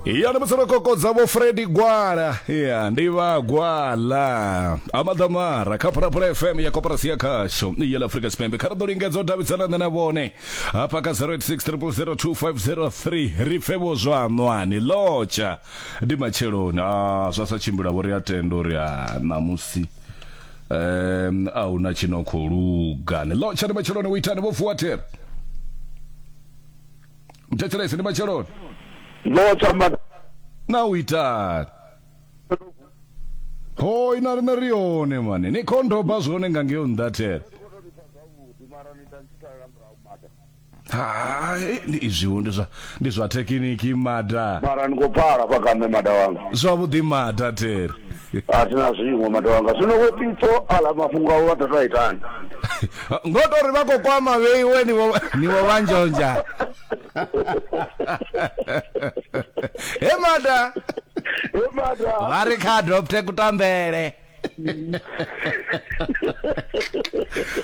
ya ndi musi ro kokodza vho fredi gwala ya ndi vha gwala amaḓamara kha phulaphula fm ya koporasi ya khasho ya la afrika tshipembe kha ri ḓo lingedza u davhidzana nṋe na vhone hafha kha 0860002503 ri pfe vho zwa ṋwani lotsha ndi matsheloni a zwa sa tshimbila vho ri a tenda uri a ṋamusi um a hu na tshino khou luga ni lotsha ndi matsheloni u itani vho vuwa thera u thetshelese ndi matsheloni ndo tamba na u itani ho ina rine ri yone mane ni khondoba zwone nga ngeo nndathela hai ndi izwiwo ndi zwa ndi zwa thekiniki mada mara ni khou pfala fha kaṋe mada wanga zwavhuḓi mada thera a thi na zwiṅwe matanga zwino vho pitso aḽa mafhungo avho vha ḓo to itani ngo to ri vha khou kwama vheiwe niwo vha nzhonzha he mada he mada vha ri kha adopte kutambele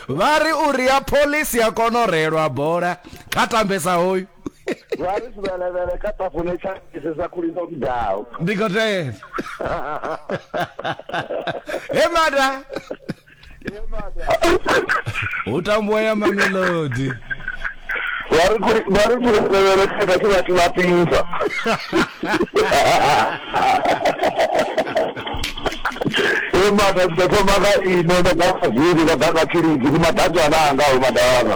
vha ri uri ya pholisi ya kona u reelwa bola kha tambesa hoyu vha ri sivhelevele kha tafune tsha isesa khuli ndo vhigaho ndi khou tevha he mada hu tambuwa ya mamelodi vha ri khuli- vha ri sivhelevele kha vhathu vhathu vha pinza e mata ndi ḓo thoma nga ino nda nga vhaziri vha ḓa nga tshilidzi ndi maḓanzwana anga o madavha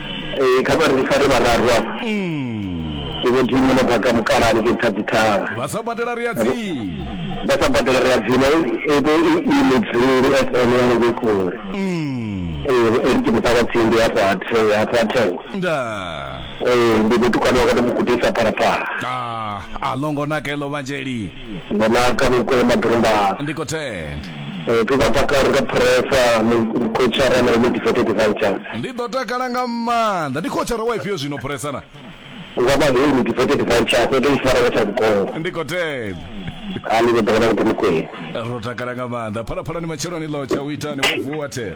Ee, kha vha ri fare vhararu afha. Ndi Vho Dimo no bva kha Mukalaha hanengei Thabithara. Vha sa badela ri a dzima. Vha sa badela ri a dzima. I vhe i i Mudzuli FM ya hanengei kule. Ee, ri tshi muṱa wa tsindi hafho ha The- hafho ha Thengo. Ndaa. Ee, ndi mutukana wa kha ḓi mu gudisa Phalaphala. Ah, a ḽo ngo naka heḽo Vhanzheli. Bonaka Mokwe Madrumbana. Ndi khou tenda. Eh, ri vha takala ri nga phuresa mukhotshara na iṅwe difete devices Ndi ḓo takala nga maanḓa. Ndi khotshara wa ifhio zwino phuresa na? nga vhahulu difete devices ndo tou ifara nga tsha vhukongo Ndi khou tenda. a ni vhe ḓo vha na vhuḓi mukwee Ro takala nga maanḓa. Phalaphalani matsheloni ḽo tsha u itani wo vuwa the.